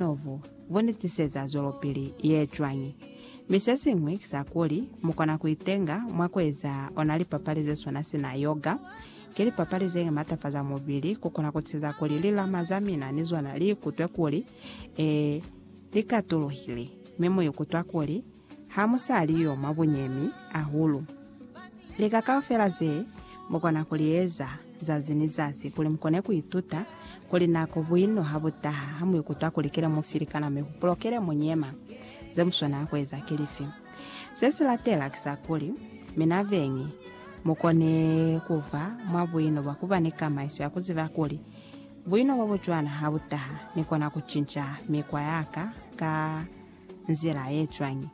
Novu vu ni tiseza zwelopili ye cwañi? Mi se siñwi ki sa kuli, mu kona ku itenga mwa ku eza ona lipapali ze swana sina yoga. Ki lipapali ze matafaza mubili, ku kona ku tiseza kuli lilama za mina ni zona li ikutwe kuli, ee, li katuluhile, mi mu ikutwa kuli, ha mu sa li yo mwa bunyemi ahulu. Lika kaufela ze mu kona ku li eza zazi ni zazi kuli mu kone ku ituta kuli na ko buino ha bu taha ha mu ikutwa kuli ki le mu filikana mi hupulo ki le mu nyema. Ze mu swanela ku eza ki lifi? Se si latela ki sa kuli, Mina beñi, mu kone ku ba mwa buino bwa ku ba ni kamaiso ya ku ziba kuli, Buino bo bu cwana ha bu taha, ni kona ku cinca mikwa ya ka ka nzila ye cwañi?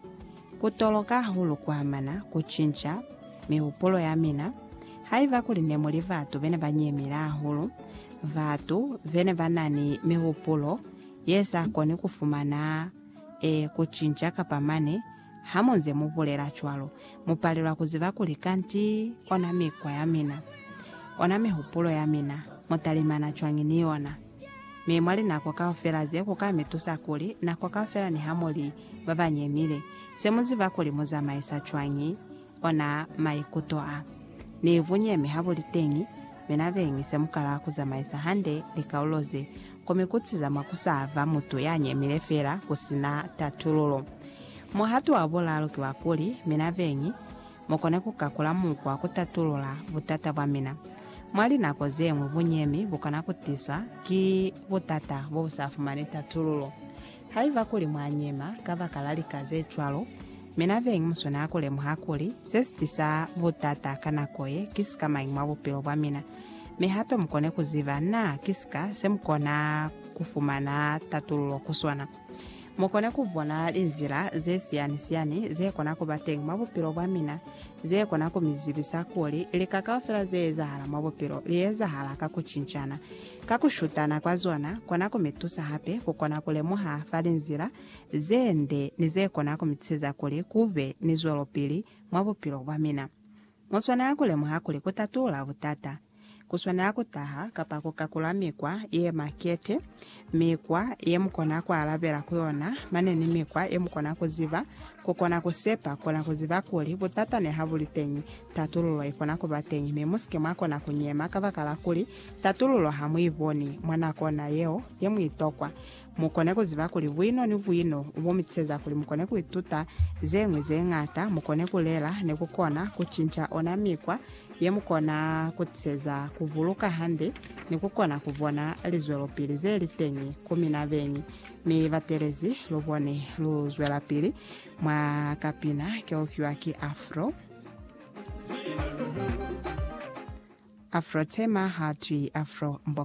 Ku toloka hahulu ku amana ku cinca mihupulo ya mina. Haiba kuli ne mu li batu be ne ba nyemile hahulu, batu be ne ba na ni mihupulo ye sa koni ku fumana e ku cinca kapa mane, ha mu nze mu bulela cwalo, mu palelwa ku ziba kuli kanti ona mikwa ya mina, ona mihupulo ya mina, mu talimana cwañi ni yona. Mi mwa linako kaufela ze, ku ka mi tusa kuli, nako kaufela niha mu li ba ba nyemile, se mu ziba kuli mu zamaisa cwañi ona maikuto a. Ni bunyemi ha bu li teñi, mi na beñi se mu kala ku zamaisa hande likaulo ze, ku mi kutiza mwa ku sa ba mutu ya nyemile feela ku si na tatululo. Muhato wa bulalu ki wa kuli, mi na beñi, Mu kone ku ka kula mukwa ku tatulula butata bwa mina. Mwa linako ze ñwi bunyemi bu kona ku tiswa ki butata bo bu sa fumani tatululo. Haiba kuli mwa nyema kabakala lika ze cwalo, mi na beñi mu swanela ku lemuha kuli se si tisa butata ka nako ye ki sikamañi mwa bupilo bwa mina, mi hape mu kone ku ziba naa ki sika se mu kona ku fumana tatululo ku sona. Mu kona ku bona linzila ze siyani-siyani ze kona ku ba teñi mwa bupilo bwa mina ze kona ku mi zibisa kuli lika kaufela ze ezahala mwa bupilo li ezahala ka ku cincana. Ka ku shutana kwa zona, kona ku mi tusa hape ku kona ku lemuha fa linzila ze nde ni ze kona ku mi tisiza kuli ku be ni zwelopili mwa bupilo bwa mina. Mu swanela ku lemuha kuli ku tatula butata ku swanela ku taha kapa ku kakula mikwa ye makete, mikwa ye mu kona ku alabela ku yona mane ni mikwa ye mu kona ku ziba ku kona ku sepa. Kona ku ziba kuli butata niha bu li teñi, tatululo i kona ku ba teñi, mi mu si ke mwa kona ku nyema kabakala kuli tatululo ha mu i boni mwa nako ona yeo ye mu i tokwa. Mukone kuziba kuli buino ni buino bo mitiseza kuli mukone kuituta zeñwi zeñata, mukone kulela, ni kukona kucinca ona mikwa yemukona kutiseza kubuluka hande ni kukona kubona lizwelopili zeliteñi ku mina beñi. Mi batelezi, lubone luzwelapili mwa kapina keufiwa ki Afro. Afro Tema hatwi Afro Mboka.